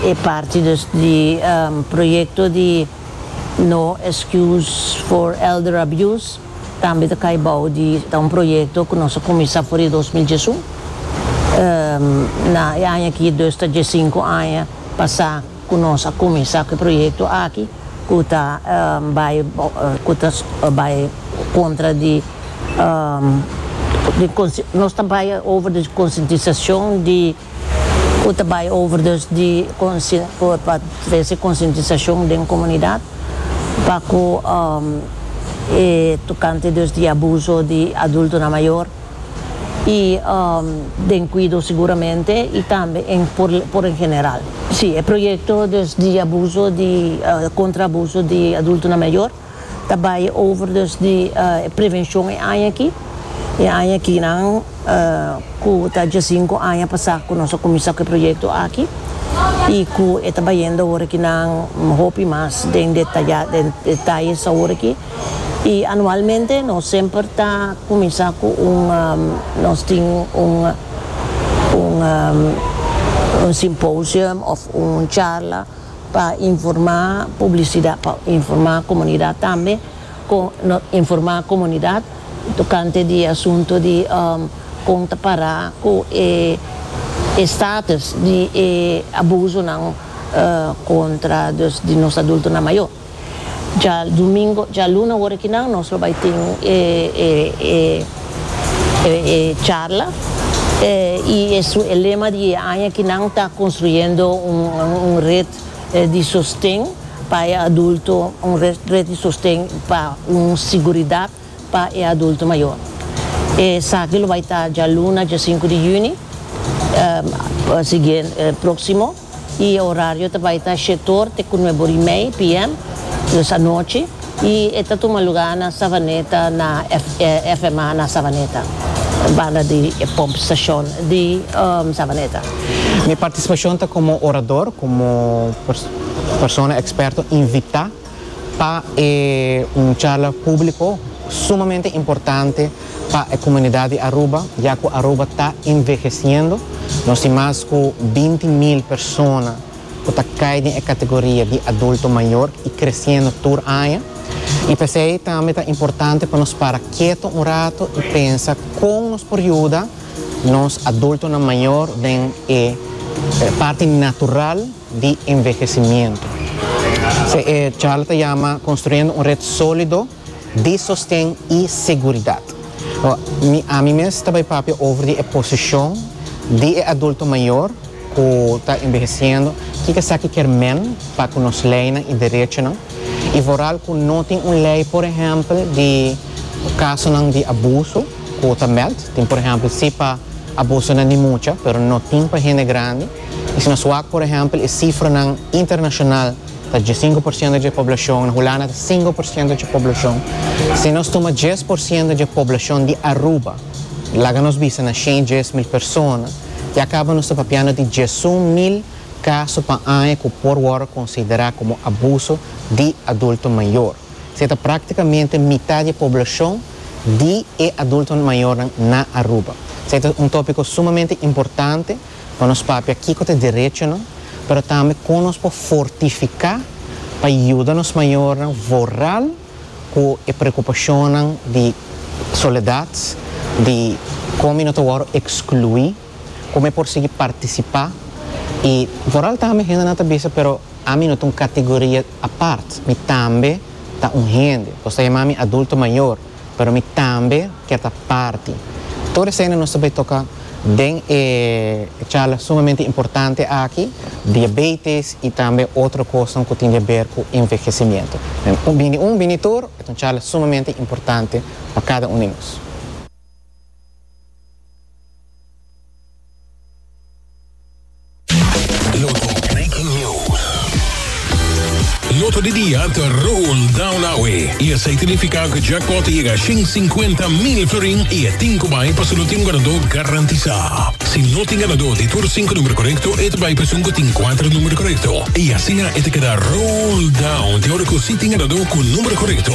E parti dus di proyekto di No Excuse for Elder Abuse tambe ta kai bou di ta un proyekto ku nos a kuminsá for di dos mil diesun. Na e aña aki dus ta diesinku aña pasá ku nos a kuminsá ku e proyekto aki ku ta bai ku ta bai kontra di di nos ta bai over di konsientisashon di. Cu ta bay over dus di pa trece concientisacion den comunidad pa cu e tocante dus di abuso di adultonan mayor y den cuido seguramente y tambe por en general. Si, e proyecto dus di abuso di contra abuso di adultonan mayor ta bai over dus di e prevenshon e aña aki. E aña aki nan ku ta djasinku aña pasá ku nos a kuminsá ku e proyekto aki i ku e ta bayendo awor aki nan hopi mas den detayá den detayes awor aki. I anualmente nos semper ta kuminsá ku un nos tin un un un simposium òf un charla. pa informa publisidat pa informa comunidat tambe con no informa comunidat tocante di e asunto di con ta para cu e e status di e abusonan contra di nos adultonan mayor. Djadomingo, djaluna ora ki nan nos lo bai tin e charla y e su e lema di e aña ki nan ta construyendo un red di sosten pa e adulto, un red di sosten pa un siguridad pa e adulto mayor. Esaki lo bai ta djaluna diasinku di juni, proximo. y e horario ta bay ta shetor te cu nue bor y mey PM, dus anochi, y e ta tuma lugar na Savaneta na FMA na Savaneta, banda di e pump station di Savaneta. Mi participacion ta como orador, como persona experto invita. pa e un charla públiko sumamente importante pa e komunidat di Aruba, ya ku Aruba ta envehesiendo. Nos tin mas ku binti mil persona ku ta kai den e kategoria di adulto mayor i kresiendo tur aña. I p'esei tambe ta importante pa nos para keto un rato i pensa kon nos por yuda nos adultonan mayor den e parti natural di envehesimiento. Se e charla ta yama Construyendo un red solido di sosten y seguridad. Mi ami mes ta bai papia over di e posicion di e adulto mayor cu ta enveheciendo, kico esaki kier men pa cu nos leynan y derechonan y vooral cu no tin un ley por ehempel di casonan di abuso cu ta meld. Tin por ehempel si pa abusonan di mucha pero no tin pa hende grandi. Asina suak, por ehèmpel, e sifranan internashonal ta djesienko por siento dje poblashon, na Hulanda ta sinko por siento dje poblashon. Si nos tuma djes por siento dje poblashon di Aruba, laga nos bisa na shen djes mil persona, ya kaba nos ta papiando di djesun mil kaso pa aña ku por wòrdu konsiderá komo abuso di adulto mayor. Se ta práktikamente mitá di e poblashon di e adulto mayornan na Aruba. Se ta un tópiko sumamente importante. pa nos papia kiko ta e derechonan, pero tambe kon nos por fortifiká pa yuda nos mayornan vorral ku e preokupashonnan di soledat, di kon mi no ta wòrdu ekskluí, kon mi por sigui partisipá i vorral tambe hendenan ta bisa pero ami no ta un kategoria apart, mi tambe ta un hende, nos ta yamá mi adulto mayor. pero mi tambe kier ta parti. Tur eseynan nos ta bay toca den e charla sumamente importante aki, diabetes y tambe otro cosnan cu tin di haber cu envehecimiento. Un bini un, bini tur, e ta un charla sumamente importante pa cada un di nos. Loto di dia ta rol down awe y esey significa cu jackpot ta yega shin cincuenta mil florin y e tin cu bay pa su no tin un ganador garantisa. Si no tin ganador di tur cinco numero corecto e ta bay pa esun cu tin cuatro numero corecto y asina e ta keda rol down te ora cu si tin ganador cu numero corecto.